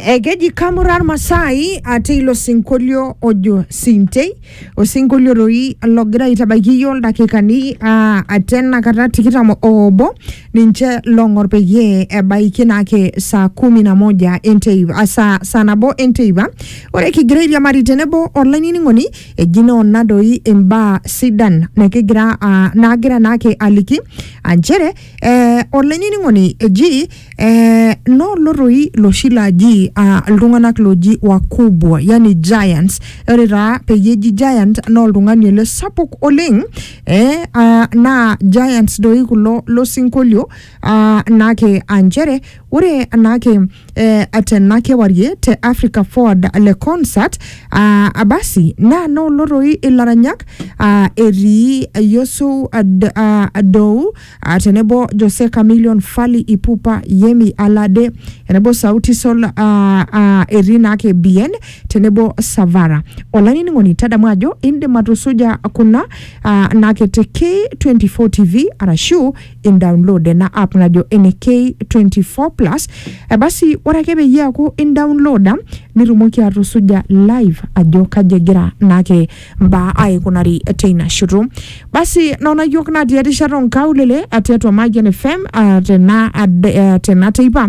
Eh, keji kamurar masai ate ilo sinkolio ojo sintei osinkolio doi logira aitabaiki iyio ildakikani ah, ate enakata tikitam oobo ninche long'or peyie ebaiki naake saa kumi na moja enteipa ah, saa, saa nabo enteipa ore kigira airiamari tenebo olainining'oni eji naa ona doi imbaa sidan nikigira ah, naagira naake aliki ah, nchere eh, olainining'oni eji eh, noolo toi loshi laaji ah, iltung'anak looji wakubwa yani giants ore taa peyie eji giant naa oltung'ani ele sapuk oleng eh, ah, naa giants doi kulo losinkolio ah, naake ah, nchere Ore anaake eh, atena kewarie te Africa Forward le concert ah, abasi naa noolo toi ilaranyak ah, etii Yusuf Ad, ah, Adou ah, tenebo Jose Chameleon, Fally Ipupa, Yemi Alade tenebo Sauti Sol ah, ah, etii naake Bien tenebo Savara. Olainining'oni tadamu ajo indim atusuja kuna ah, naake te K24 TV arashu indaunlood ena app najo ene K24 plus eh, basi ore ake peyie eaku indaunloda nitumoki atusuja live ajo kaji egira naake mbaa aikunari teina shoto basi nona yiok natii erishata onkaulele eh, tiatua Mayian FM ah, tena ade- eh, tena teipa